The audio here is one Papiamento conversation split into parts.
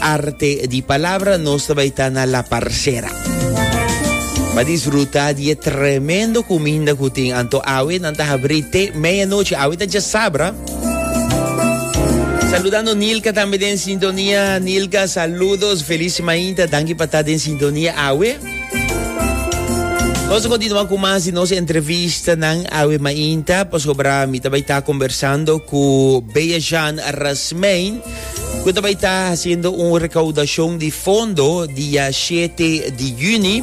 Arte di Palabra, nos ta bai ta na La Parcera. Pa disfruta di e tremendo kuminda ku tin. Anto awe nan ta habri te medianoche. Awe ta dja sabra. Saludando Nilka tambe den sintonia. Nilka, saludos. Feliz mainta. Danki pa ta den sintonia awe. Nos continua ku mas di nos entrevista nan awe mainta. Pasobra mi ta bai ta conversando ku Bea Jean Rasmein. Cu ta bay ta haciendo un recaudacion di fondo dia 7 di juni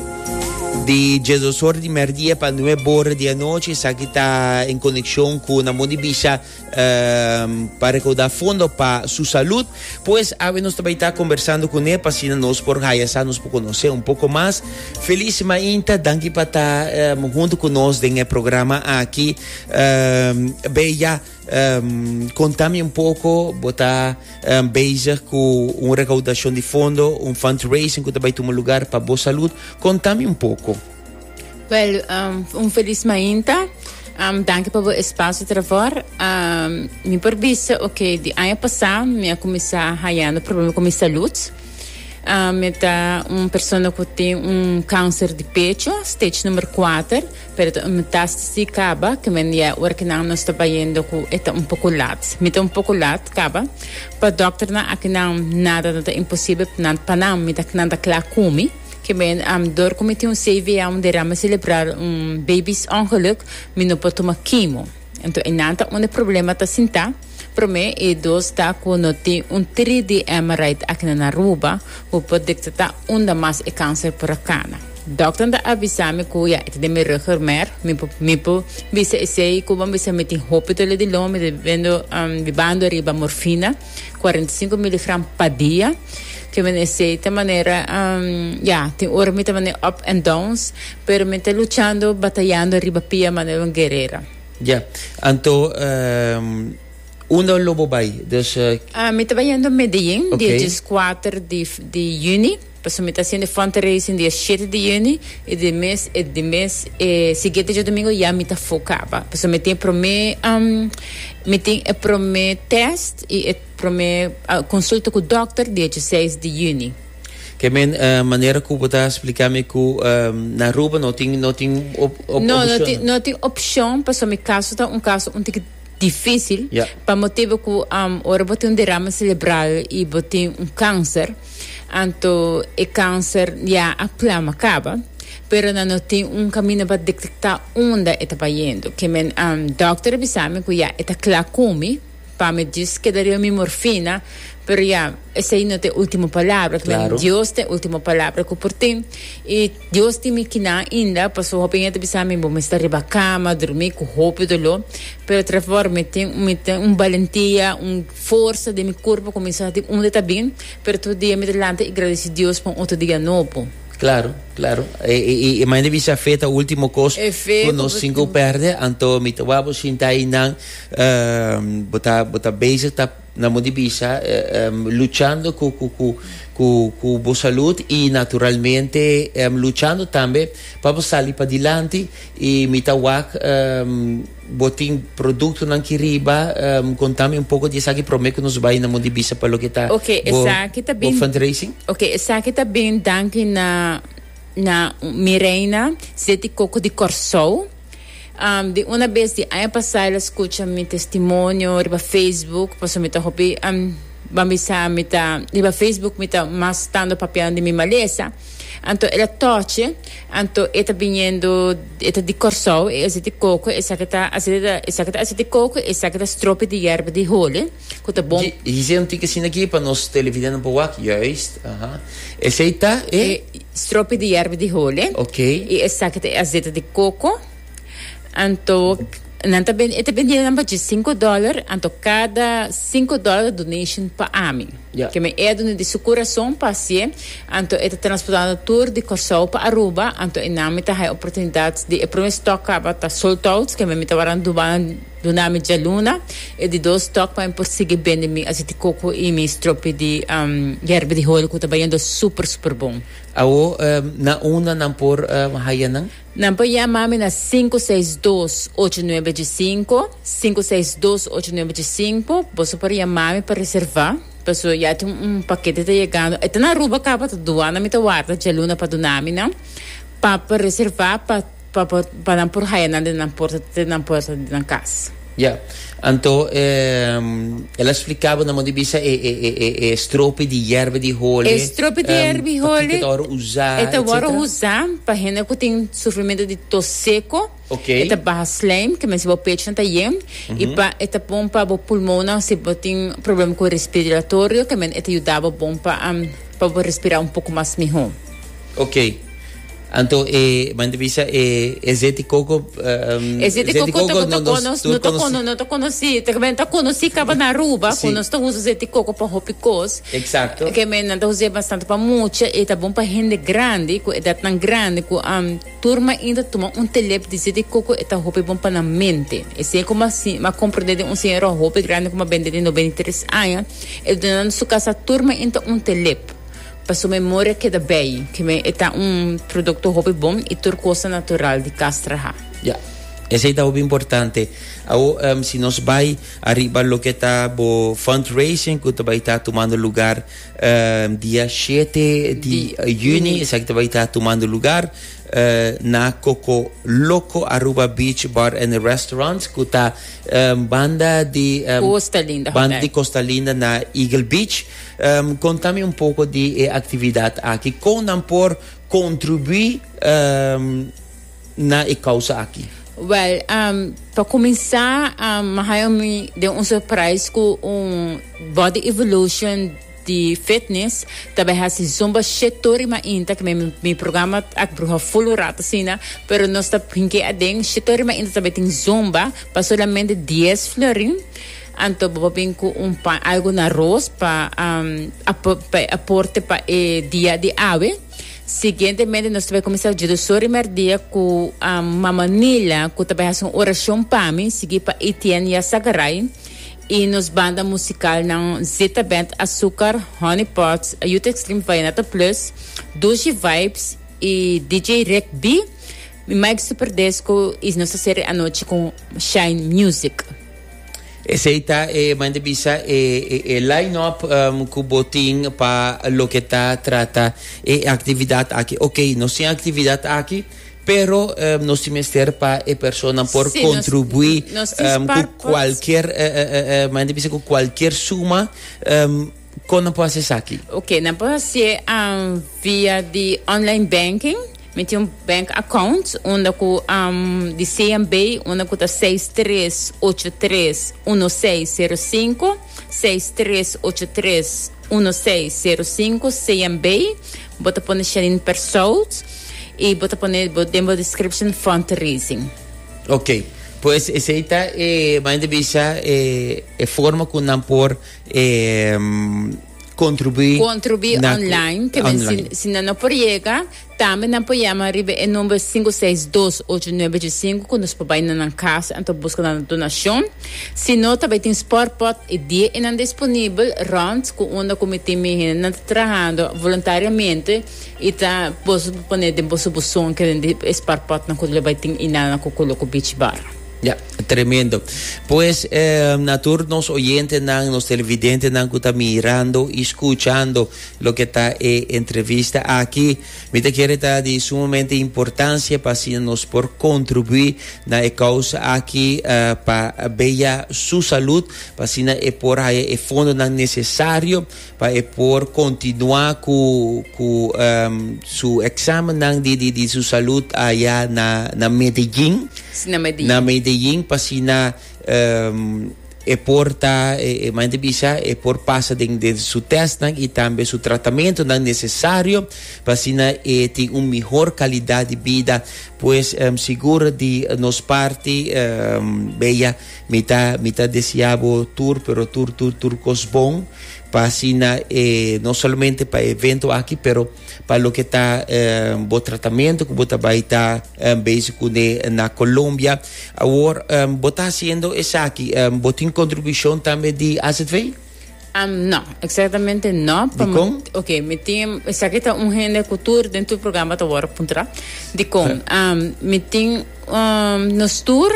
di Jesus hora di merdia pa 9 hora di anoche. Saki ta en conexión cu na modi bisa um, pa recaudar fondo pa su salud. Pues awe nos tabay ta conversando con él pa si nos por haya sa nos por conocer un poco más. Feliz mainta, danki pa ta um, junto con nos den el programa aquí. Um, bella. Um, conta mi un poco, bo ta um, bezig cu un recaudacion di fondo, un fundraising cu ta bay tuma lugar pa bo salud. Conta mi un poco. Wel, um, un feliz mainta. Um, dank pa bo espacio travor. Um, mi por bisa, ok, di año pasado mi a comenzar hayando problema con mi salud. Um, mi ta un persona que tem um câncer de pecho, stage número 4. Pero ta un metástasi kaba ke men dia ora ke nan nos ta bayendo ku e ta un poko lat. Mi ta un poko lat kaba. Pa dòkternan akinan nada no ta imposibel, pa nan mi ta nan ta kla ku mi. Ke men dor ku mi tin un CVA, un derame selebral, un baby's ongeluk, mi no por tuma kimo. Enton e nan ta unda e problema ta sintá. Promé e dos ta cu no tin un tri di Emerite aki na Naruba cu por detecta unda mas e cancer por a cana. Dokternan ta avisa mi cu ya e ta den mi rugger mer, mi por mi por bisa esey cu bo bisa mi tin hopi dole di longa, mi ta bibendo bibando riba morfina cuarenta y cinco miligram pa dia, ke menesey ta manera ya tin ora mi ta manera up and downs pero mi ta luchando batayando riba pia manera un guerera. Ya, anto unda lo bo bai? Dus e. Ah, mi ta bai yendo Medellin, di e dieskuater di, di yüni, pasobra mi ta hasiendo e fun racing di e shete di yüni, i di mes, e di mes e siguiente djodomingo ya mi ta fokaba, pasobra mi tin e promé, mi tin e promé test i e promé consulta cu dokter di e dieseis di yüni. Ke manera ku bo ta splika mi ku na Aruba no tin no tin opshon? No, no tin no tin opshon pasobra mi kaso ta un kaso un tiki difísil pa motibu ku ora bo tin un derama selebral i bo tin un kanser anto e kanser ya a plama kaba pero nan no tin un kaminda pa detektá unda e ta bayendo. Ke men dòkter a bisa mi ku ya e ta kla ku mi. Pa mi Dios kedaria un mimor fina, pero ya, esei no ta e ultimo palabra, ta men Dios ta e ultimo palabra ku por tin. I Dios tin mi kina ainda, paso hopi hende ta bisa mi bo mester riba kama durmi ku hopi doló, pero tra for mi tin mi tin un balentia, un forsa den mi kurpo ku mi sa di unda ta bin, pero tur dia mi ta lanta i gradisi Dios pa un otro dia nobo. Claro, claro. E e e mane bisa fe ta ultimo kos ku nos tin ku perde, anto mi ta wak bo shinta ei nan. Bo ta bo ta bezig ta nan bo di bisa luchando cu cu cu cu cu bo salud y naturalmente luchando tambe pa bo sali padilanti y mi ta wak bo tin productonan ki riba contami un poco di esaki prome cu nos bay nan bo di bisa pa loke ta Okay, bo esaki ta bo bin fundraising. Okay, esaki ta bin danki na na Mireina Zeti Coco di Corsou. Di una bes di aña pasá el a skucha mi testimonio riba Facebook, pasobra mi ta hopi bambisá. Mi ta riba Facebook mi ta mas stando papiando di mi malesa. Anto el a tòchi, anto e ta biniendo, e ta di Kòrsou, e a hasi ti koko, esaki ta hasi, esaki ta hasi ti koko, esaki ta stropi di yèrba di holi. cu ta bon. Dji, hizé un tik asina aki pa nos televidentenan por wak. Juist, aha. Esei ta e? E stropi di yerba di hole. Ok. I esaki ta e azete di coco. Anto, nan ta ben, e ta bendié nan pa dje cinco dollar. Anto cada cinco dollar donation pa ami. Ya. Ke mi e a duna di su curason pa hacié. Anto e ta transportando tur di Corsou pa Aruba. Anto e nan mi ta haya oportunidad di e prome stock caba ta sold out. Ke mi mi ta wòrdu nan duba nan. Duna mi djaluna, e di dos tok pa mi por sigui bende mi asiti koko i mi stropi di yerba di holi ku ta bayendo super super bon. Awo na unda nan por haya nan? Nan por yama mi na sinku seis dos ocho nuebe dje sinku, sinku seis dos ocho nuebe dje sinku. Boso por yama mi pa reserva paso ya tin un pakete ta yegando. E ta na Aruba kaba ta duana mi ta warda djaluna pa duna mi nan pa pa reserva pa. Pa por, pa nan por haya nan den nan porta te nan puerta di nan cas. Ya. Anto, e, el a spliká bo nan modo di bisa e, e, e, e, e stropi di yerba di hole. E stropi di yerba di hole. Um, pa kiko ta wòrdu usá, etsetera. E ta wòrdu usá pa hende ku tin sufrimentu di tos seko. Ok. E ta baha slijm, ke mester bo pechnan ta yen. Um. I pa, e ta bon pa bo pulmonnan si bo tin problema ku respiratorio, ke men e ta yuda bo bon pa, pa bo respirá un poko mas mihó. Ok. Anto e mandivisa e e zeti coco um, E zeti coco toco no conos, no to cono, no to conoci, te ben ta conoci caba na Aruba, sí. conos ta usa zeti coco pa hopi cos. Exacto. Que men ta usa bastante pa mucha, e ta bon pa hende grande, cu edad nan grande, cu um, turma inta tuma un telep di zeti coco e ta hopi bon pa nan mente. E sen como así, ma comprende de un señora hopi grande como bende de 93 aña, e duna nan su casa turma inta un telep. Pa su memoria keda bay. Ki me e ta un producto hopi bon y tur cosa natural di castraha. Ya. Esey ta hopi importante. Awo em si nos bay ariba loke ta bo fundraising cu ta bay ta tumando lugar em dia shete di juni esaki ta bay ta tumando lugar em na Coco Loco Aruba Beach Bar and Restaurant cu ta em banda di em Costa Linda Hotel. banda di Costa Linda na Eagle Beach. Conta mi un poco di e actividad aki, con nan por contribui na e causa aki? Wel, pa cuminsa mi haya mi den un surprise cu un body evolution di fitness, ta bay haci zumba shit tur y mainta, ke mi mi programa a bruha full un rato asina, pero nos ta hink'e aden, shit tur y mainta ta bay tin zumba pa solamente dies florin. Anto bo bin cu un pan, algo na roos pa aporte pa e dia di awe. Siguientemente nos ta bai cuminsa dje dos ora y merdia cu Mama Nila cu ta bai haci un oracion pa mi, sigui pa Etienne y Azagaray y nos banda musicalnan Zeta Band Azucar, Honey Pots, Youth Extreme Vallenato Plus, Dushi Vibes y DJ Rick B. Mike Superdisco y nos ta cere anochi cu Shine Music. Esey ta e manda bisa e e line up cu bo tin pa loke ta trata e actividad aki. Ok, nos tin actividad aki, pero nos tin mester pa e personanan por Sí, nos- contribui nos tin cu spar pots. cualkier, manda bisa cu cualkier suma. Kon nan por hacié esaki? Ok, nan por hacié um, via di online banking. Mi tin un bank account unda cu um, di CNB unda cu ta seis tres ocho tres uno seis cero cinco, seis tres ocho tres uno seis cero cinco CNB. Bo ta pone Shanine Persaud y bo ta pone bo den bo description fundraising. Ok, pues esei ta e, manera di bisa, e, e forma cu nan por E contribuí. Contribuí online, que men si, si nan no por llega, también nan por llama arriba e number 562-8915, que nos por bay na nan casa, anto busca nan donacion. Si no, tabay tin sport pot, e die e nan disponibel, rond, cu unda cu mi tin mi hende nan ta trahando voluntariamente, y ta, boso por pone den boso buzon, kende e sport potnan cu lo bay tin inana cu colo cu beach bar. Ja. Tremendo. Pues eh, a tur nos oyentenan, nos televidentenan ku ta mirando i skuchando loke ta e entrevista aki, mi ta kere ta di sumamente importansia pa asina nos por kontribuí na e kousa aki eh, pa beya su salud, pa asina e por haya e fondonan nesesario pa e por continua cu cu ehm su examennan di di di su salud aya na na Medellin, Si na Medellin. na Medellin p'asina ehm e por ta e e manda bisa e por pasa den den su testnan y tambe su tratamentonan necesario p'asina e tin un mihor calidad di bida. Pues ehm sigur di nos parti ehm Bea Mi ta mi ta desea bo tur pero tur tur tur cos bon pa asina eh, no solamente pa evento aki pero pa lo que ta eh, bo tratamiento que bo ta bai ta eh, bezig cune na Colombia. Awor eh, bo ta haciendo esaki, eh, bo tin contribucion tambe di AZV? Um no, exactamente no. Dicon? Ok, mi tin, sa que ta un hende cu tur den tu programa ta wor puntra. Dicon, um, mi tin, um, nos tur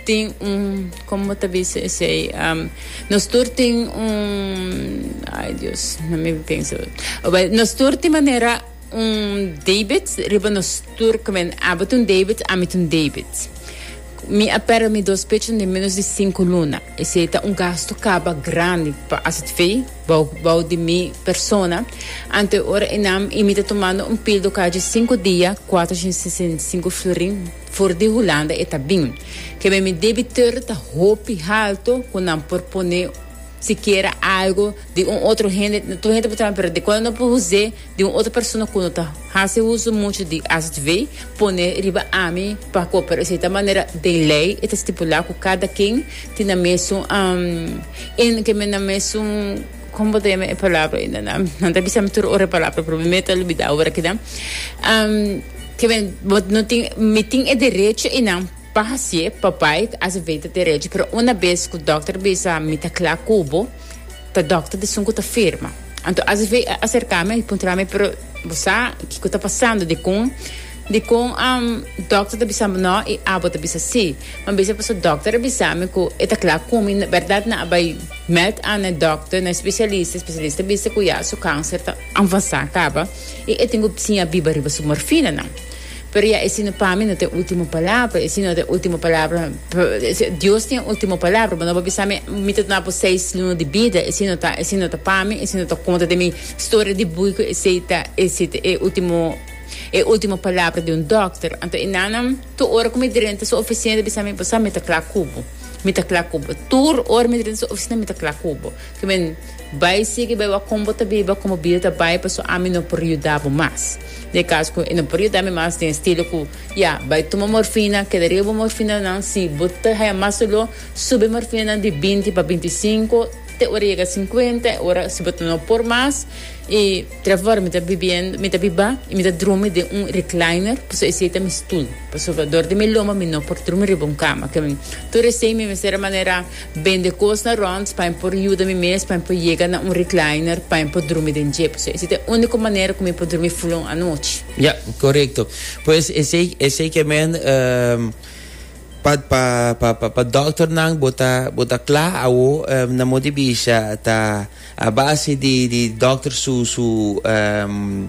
tin un, como ta bisa ese, um, nos tur tin un, ay Dios, no me pienso. Well, nos tur tin manera Un debit riba nos tur comen Abo t'un debit, ami t'un debit. Mi a perde mi dos pechen den menos di cinco luna. Esey ta un gasto caba grandi pa AZV bou bou di mi persona. Ante ora enam y mi ta tomando un pildo caji cinco dia, cuatrochenta y sesenta y cinco florin for di Hulanda e ta bin. Kebe mi debiteur ta hopi halto cu nan por pone sikiera algo di un otro hende. Tur hende por traha mi pero di cuando no por huze. di un otro persona cu no ta haci uso mucho di HDV pone riba ami pa cooper esey ta manera den ley e ta stipula cu cada ken tin nan mesun um in ke men nan mesun como bo ta yama e palabra ey nana nan ta bisa mi tur ora e palabra pero mi meta lubida ora aki nan um ke men bo no tin mi tin e derecho ey nan pa hacié pa bay HDV ta derecho pero una bes cu doctor bisa mi ta cla cu bo. ta dokter di sun ku ta firma. Anto ACV a aserka mi i puntra mi, Pero bo sa kiko ta pasando? Dikon dikon dokter ta bisa bo no i abo ta bisa si? Mi a bisa pasobra dokter a bisa mi ku e ta kla ku mi. Bèrdat nan a bai mèt an na e dokter, na e spesialista. E spesialista a bisa ku ya su kanser ta avansá kaba i e tin ku siña biba riba su morfinanan. Pero ya esi no pami no tin ultimo palabra esi no tin ultimo palabra Dios tin e ultimo palabra bo no bo bisa mi mi ta duna bo seis luna di bida esi no ta esi no ta pami esi no ta konta den mi storia di bui ku esei ta esi ta e ultimo e ultimo palabra di un dokter anto e nana tur ora ku mi drenta su ofisina ta bisa mi bo sa mi ta kla ku bo mi ta kla ku bo tur ora mi drenta su ofisina mi ta kla ku bo. Ke men bai sigui bai wak kon bo ta biba kon bo bida ta bai paso ami no por yuda bo mas. Na e kas ku e no por yuda mi mas den estilo ku ya bai tuma morfina keda riba bo morfinanan si bo ta haya mas doló subi morfinanan di binti pa binti sinku te ora yega sinkuenta e ora si bo ta no por mas i Tra for mi ta bibiendo mi ta biba i mi ta drumi den un recliner paso esei ta mi stul paso dor di mi loma mi no por drumi riba un kama ke men tur esei mi mester a manera Bende kos na Ronds pa mi por yuda mi mes pa mi por yega na un recliner pa mi por drumi den dje pues esei ta e unico manera cu mi por drumi fulon anochi. Ya, corecto. Pues esei esei ke men ehm pa pa pa pa pa dokternan bo ta bo ta kla awo ehm na mon di bisha ta a base di di dokter su su ehm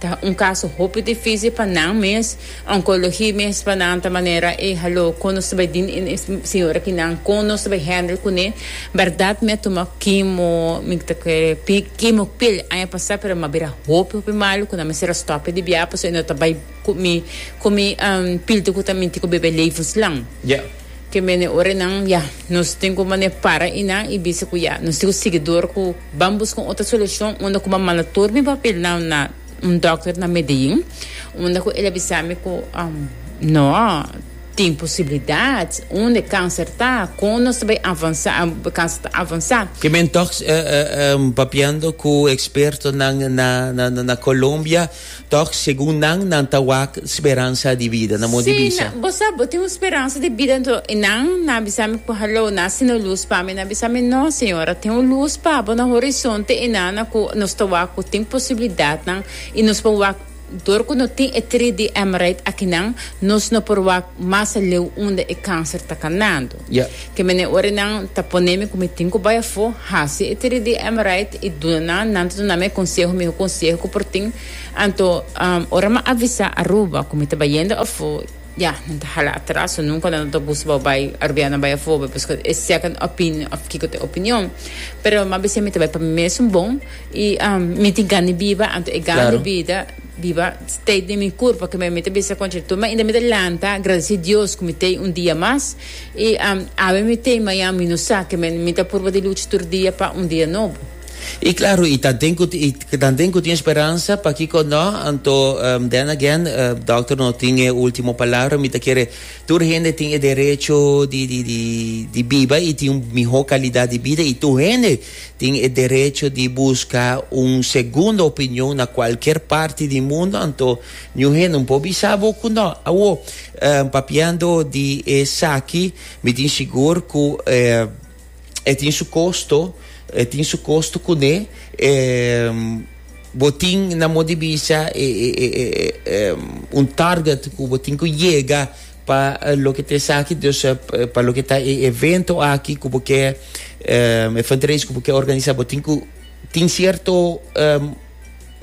Ta un kaso hopi difísil pa nan mes. Onkologi mes pa nan ta manera e haló kon nos ta bai dina e señora ki nan kon nos ta bai handle kuné. Bèrdat mi a tuma kimo, mi ta kere kimo kwel aña pasá pero mi a bira hopi hopi malu ku nan mester a stòpia di biaha pasobra e no ta bai ku mi ku mi pilte ku ta minti ku bebe levenslang. Ke mene ora nan ya nos tin ku manera para i nan i bisa ku ya nos tin ku sigui dor ku. Ban busca un otro solucion unda cu ban manda tur mi papelnan na un dokter na Medellin, unda cu el a bisa mi cu no tin posibilidad, unda e cancer ta, con nos ta bay avansa, e cancer ta avansa. Ke men tok papiando cu expertonan na Colombia. Tòg, segun nan, nan ta wak speransa di bida. Nan mos di bisa. Si, bo sa, bo tin un speransa di bida. Anto i nan, nan a bisa mi ku, Halou, nan a sina lus pa mi. Nan a bisa mi, No, Señor, a tin un lus pa bo na horizonte i nan na ku nos ta wak ku tin posibilidatnan i nos por wak. Dor ku no tin e tri di Emerite akinan, nos no por wak mas aleu unda e kanser ta kanando. Kemene ora nan ta pone mi ku mi tin ku bai afó, hasi e tiri di Amorite i duna nan, nan ta duna mi e konseho mihó konseho ku por tin. Anto, ora mi a avisá Aruba ku mi ta bai yendo afó, ya, nan ta hala atras, so nunka nan no ta gusta bou bai Arubian nan bai afó, bai buska e second opinion òf kiko ta e opinion. Pero mi a bis'é mi ta bai pa mi mes un bon i mi tin gan di biba, anto e gan di bida, Biba stay den mi kurpa ke mi ami ta bisa konchi tur ma inda mi ta lanta gradisi Dios ku mi tei un dia mas i awe mi tei mañan mi no sa ke mi ta purba di lucha tur dia pa un dia nobo. I klaru i tanten ku i tanten ku tin speransa pakiko no anto then again dòkter no tin e ultimo palabra mi ta kere tur hende tin e derecho di di di biba i tin un mihó kalidat di bida i tur hende Tin e derecho di busca un segundo opinion na cualkier parti di mundo, anto niun hende por bisa bo cu no. Awo, papiando di esaki, mi tin sigur cu e tin su costo, e tin su costo cu ne. Bo tin na modo di bisa un target cu bo tin cu yega. Pa loke ta esaki dus pa loke ta e evento aki ku bo ke e fundraise ku bo ke organisa bo tin ku tin sierto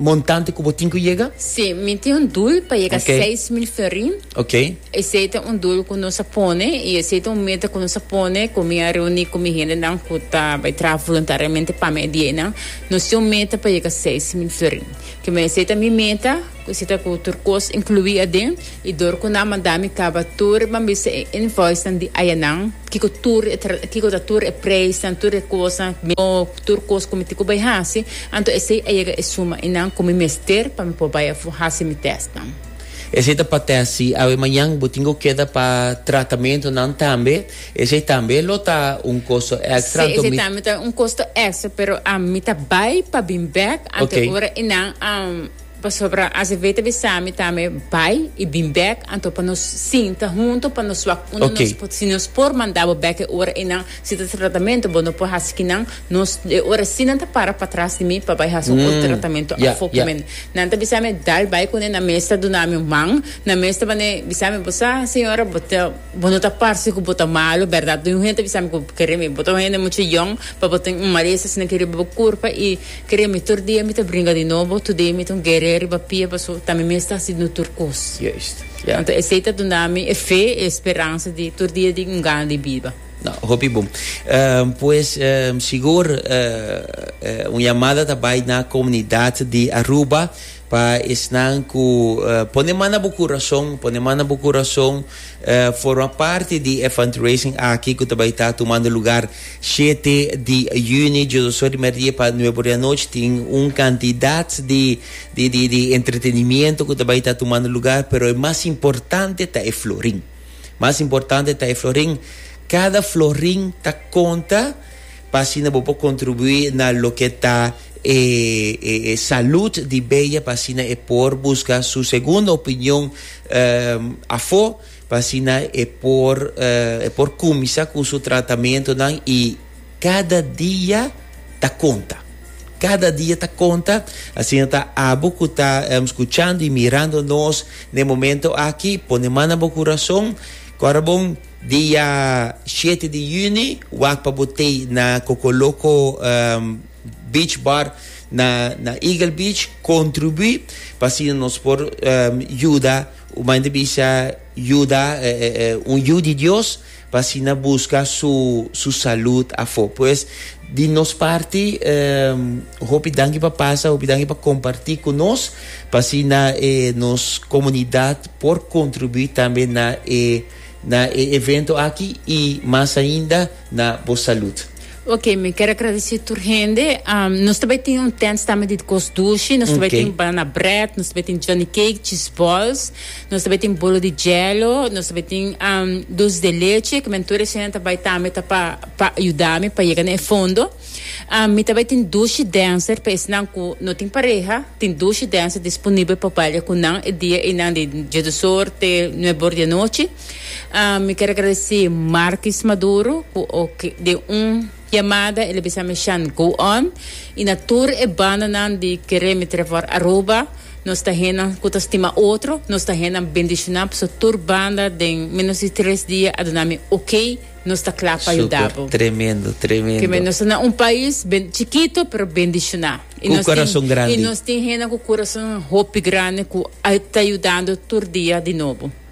montante ku bo tin ku yega? Si, mi tin un dul pa yega okay. seis mil ferin. Okay. Esei ta un dul ku nos a pone i esei ta un meta ku nos a pone ku mi a reuni ku mi hendenan ku ta bai traha voluntariamente pa mi e dienan. Nos tin un meta pa yega seis mil ferin. Ke mi esei ta mi meta. Cu si ta cu tur cos inclui aden, y dor cu nan manda mi caba tur e bambisa e invoicenan di ayanan, kico tur e tra, kico ta tur e prijsnan, tur e cosnan, mester no tur cos cu mi tin cu bay haci, anto esey a yega e suma y nan cu mi mester pa mi por bay a haci mi testnan. Esey ta pa test, si awe mañan bo tin cu keda pa tratamentonan tambe, esey tambe lo ta un costo extra, Sí, anto esey mi. tambe ta un costo extra, pero ami ta bay pa bin bek, anto e ora y nan a. Pasobra Azevedo a bisa mi tambe bai y bin bek, anto pa nos sinta hunto pa nos wak unda nos Ok. por, si nos por manda bo bek e ora eynan, si ta tratamento bo no por haci kinan, nos e ora así nan ta para patras di mi pa bai haci un otro tratamento Ya, afo cu ya. mi. Nan ta bisa mi dal bai cune, nan mes ta duna mi un man, nan mes ta bane bisa mi bo sa señora bo ta, bo no ta parce cu bo ta malo, berdad? Tin un hende ta bisa mi cu bo kere mi, bo ta un hende mucho yong pa bo tin un malesa, si nan kere bo bo curpa y Kere mi tur dia mi ta bringa di nobo, today mi ta un guerrea riba pia paso ta mi mes ta hasi no tur kos. Juist. Yeah. Anto esei ta duna mi e fe, e speransa di tur dia di un gana di biba. No, hopi bon. Ehm, pues, ehm, sigur, eh, eh, un yamada ta bai na comunidad di Aruba. Pa esnan cu pone man na bo curason, pone man na bo curason forma parti di e fundraising aki cu ta bay ta tumando lugar shete di juni djodo so rimer dia pa nuebe ora di anochi tin un cantidad di di entretenimiento cu ta bay ta tumando lugar pero e mas importante ta e florin mas importante ta e florin cada florin ta conta Pa asina bo por contribui na loke ta e salud di Bea pa asina e por busca su segunda opinion afo pa asina e por e por cuminsa cu su tratamentonan y cada dia ta conta. Cada dia ta conta asina ta abo cu ta scuchando y mirando nos na e momento aki pone man na bo curason cora bon Dia shete di yüni wak pa bo tei na Cocoloco Beach Bar na Eagle Beach. Contribuí pa asina nos por yuda un manda bisa yuda un yu di Dios pa asina busca su salud afó. Pues di nos parti hopi danki pa pasa, hopi danki pa comparti cu nos pa asina nos comunidad por contribuí tambe na e Na e evento aki y mas ainda na bo salud. Ok, mi ker agradece tur hende. Um, nos ta bai tin un tent stama di cos dushi. Nos ta bai tin banana bread, nos ta bai tin johnny cake, cheese balls, nos ta bai tin bolo di jello, nos ta bai tin um, dulce de leche, que men tur eshen ta bai tambe ta pa, pa yuda mi pa yega na e fondo. Mi ta bai tin dushi dancer pa esnan ku no tin pareha, tin dushi dancer disponible pa baila ku nan e dia einan di die de zomer te nuebe or di anochi. Mi kier agradesé Marcus Maduro ku oke den un yamada el a bisa mi Shan go on i na tur e bandanan di Keremi trèf for Aruba. Nos ta hennan ku ta stima otro, nos ta hennan bendishoná pasobra tur banda den menos di tres dia a duna mi oke. Nos ta kla pa yuda bo. Tremendo, tremendo. Keme nos ta na un pais ben, chikito pero bendishoná. Ku kurason grandi. I nos tin hende ku kurason hopi grandi ku a ta yudando tur dia di nobo.